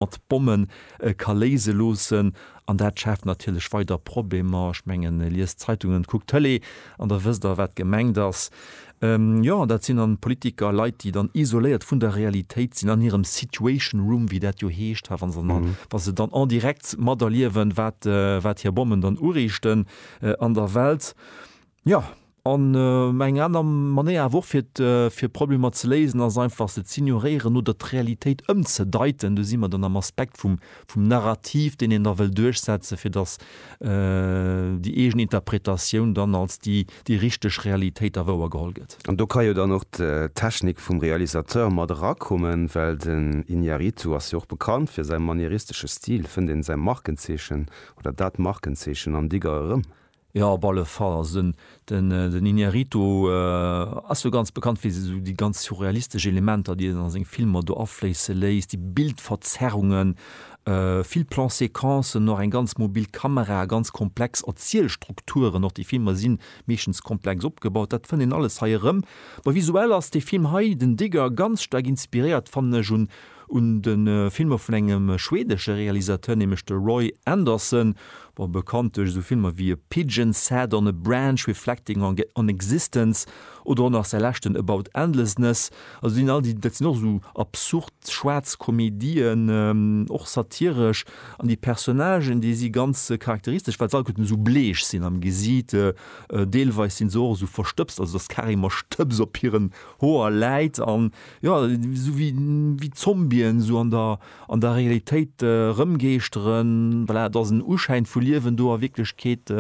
mat Bommen ka léise loossen. An dat schaaft natierlech weider Problemer. Ech mengen, liest d'Zeitungen, kuckt d'Tëlee an da wësst Der, wat gemengt ass. Jo, dat sinn dann Politiker, Leit, déi dann isoléiert vun der Realitéit sinn, an hirem Situation Room, wéi dat jo heescht, ha wa se dann, wa se dann en direct materliewen, wat, wat hir Bommen dann uriichten an der Welt. Jo, an eng aner Manéier awer och fir d'Problemer ze léisen ass einfach se z'ignoréieren oder d'Realitéit ëmzedeiten. Do si mer dann am Aspekt vum Narrativ, deen een da wëll duerchsetzen, fir datt déi eegen Interpretatioun dann als déi richteg Realitéit da wouergeholl gëtt. An do ka jo dann och d'Technik vum Realisateur mat erakommen, well den Iñárritu ass jo och bekannt fir säi manieristeschen Stil. Fënnt een säi Markenzeechen oder dat Markenzeechen am Digger erëm? Jo, op alle Fall. Also den, den, den Iñárritu ass jo ganz bekannt fir esou déi ganz surrealistesch Elementer, déi en a seng Filmer do afléisse léisst, déi Bildverzerrungen, vill Plan-séquencen och, eng ganz mobil Kamera, ganz komplex Erzielstrukturen och. Déi Filmer si meeschtens komplex opgebaut. Dat fënnt een alles hei erëm. Mä visuell ass dee Film hei, den Digger, ganz staark inspiréiert, fannen ech, un, Un de Filmer vun engem schweedesche Realisateur, nämlech de Roy Andersson, ma bekannt duerch esou Filmer wéi A Pigeon Sat on a Branch, Reflecting on Existence oder och nach säi leschten About Endlessness. Also sinn all déi, dat sinn och esou absurd schwaarz Komedien, och satiresch, an déi Personnagen, déi si ganz charakteristesch, well se alleguerten esou bleech sinn am Gesiit. Deelweis si se och esou verstëbst, also dass carrément Stëbs op hiren Hoer läit, an Jo, esou wéi Zombien esou an der an der Realitéit rëmgeeschteren. Voilà, et ass en Uschäin vu Liewen do. A Wierklechkeet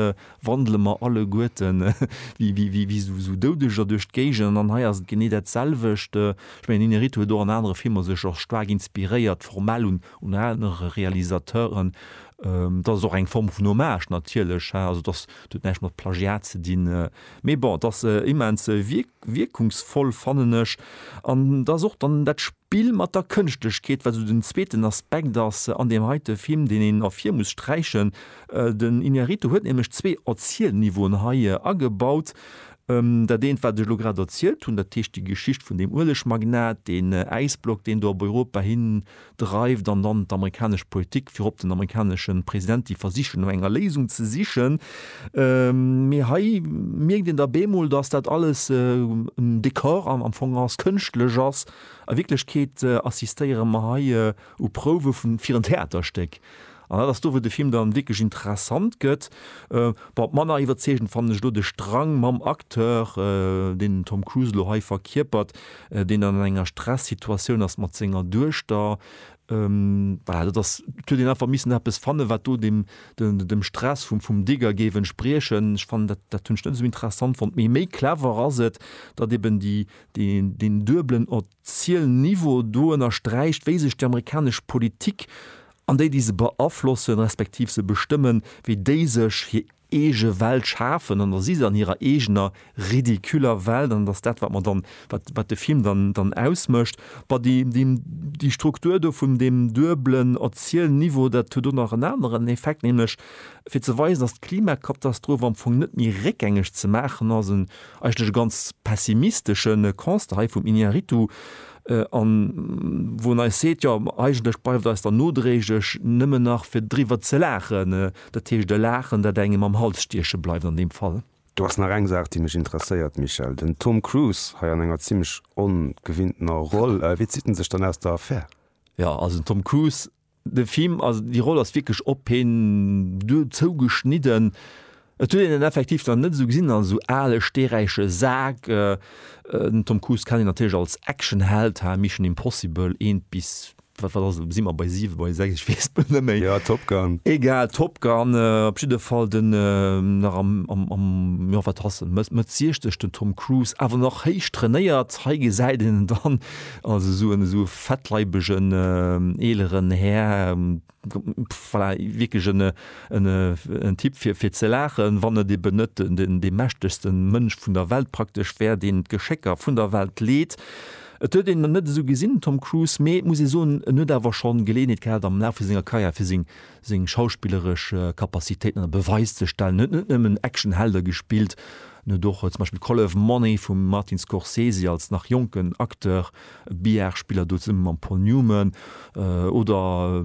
wandele mer alleguerten wéi esou Doudeger duerch d'Géigend. An hei ass et genee dat selwecht. Ech mengen, Inarritu huet och an anere Filmer sech och staark inspiréiert, formell un anere Realisateuren. Et ass och eng Form vun Hommage natierlech, also et ass, et huet näischt mat Plagiat ze dinn. Mee bon, et ass immens wierklech. Wierkungsvoll fannen ech, an et ass och dann dat Spill mat der Kënschtlechkeet, wat esou den zweeten Aspekt ass an deem heite Film, deen een ervir muss sträichen. Den Iñárritu huet nämlech zwee Erzielniveauen hei agebaut. Dat eent, wat ech elo grad erzielt hunn, dat heescht déi Geschicht vun deem Uelegmagnat, deen Äisblock, deen do op Europa hin dreift an dann d'amerikanesch Politik virop den amerikaneschen President déi versichen no enger Léisung ze sichen. Mee hei mierkt een da bemol dass dat alles en Dekor am Fong ass, kënschtlech ass. A Wierklechkeet assistéiere mer hei u Prouwe vun fir en Theaterstéck. An dat ass do, wou de Film dann wierklech interessant gëtt. Bon, manner iwwerzeegend fannen ech elo de Strang mam Acteur, deen den Tom Cruise elo hei verkierpert, deen dann an enger Stressituatioun ass mat senger Duechter. Voilà, dat ass, et huet een einfach missen eppes fannen, wat do dem, dem Stress vum, vum Digger géif entspriechen. Ech fannen dat, dat hunn ech net esou interessant fonnt. Mee méi clever ass et, datt eeben déi, déi, deen duebelen Erzielniveau do ënnersträicht, wéi sech déi amerikanesch Politik An déi, déi se beaflossen, respektiv se bestëmmen, wéi déi sech hir eege Welt schafen, an da si se an hirer eegener ridiculer Welt, an et ass dat, wat mer dann, wat, wat de Film dann, dann ausmécht. Bah, déi, déi, déi Struktur do vun deem duebelen Erzielniveau, dat huet och nach en aneren Effekt, nämlech fir ze weisen, datt d'Klimakatastroph am Fong net méi réckgängeg ze maachen ass, en eigentlech e ganz pessimisteschen Constat hei vum Iñárritu, an wou en eis seet, jo eigentlech bleift eis dann nodréiglech nëmmen nach fir driwwer ze laachen, dat heescht e Laachen, dat engem am Hals stieche bleift an deem Fall. Do ass nach eng Saach, déi mech interesséiert, Michel. Den Tom Cruise, hei an enger zimmlech ongewinntener Roll, wéi zitt en sech dann aus der Affär? Jo, also den Tom Cruise De Film, also déi Roll ass wierklech op hien zou geschnidden. Et huet een en effektiv nach net esou gesinn als esou ale steeräiche Sak. Den Tom Cruise kennt een natierlech als Actionheld, hae Mission Impossible 1 bis, wat wat ass et, si mer bei 7, bei 6, ech weess et bal net méi. Jo, Top Gun. Egal, Top Gun op jidde Fall, den nach am am am, jo wat ass en, Mëtt 60, den Tom Cruise, awer nach héich trainéiert. Hei gesäit een en dann Also esou en esou e fettleibegen eeleren Här, voilà, wierklech en en Typ fir fir ze laachen, wann et eben net den dee mächtegste Mënsch vun der Welt praktesch wär, deen d'Geschécker vun der Welt leet. Et huet een en net esou gesinn, den Tom Cruise, mee muss ee soen, en huet awer scho Geleeënheet gehat am Laf vu senger Karriär fir seng seng schauspilleresch Kapazitéiten ënner Beweis ze stellen. En huet net nëmmen Action-Helder gespillt, en huet och zum Beispill Color of Money vum Martin Scorsese als nach jonken Acteur, Billard-Spiller do zesumme mam Paul Newman oder,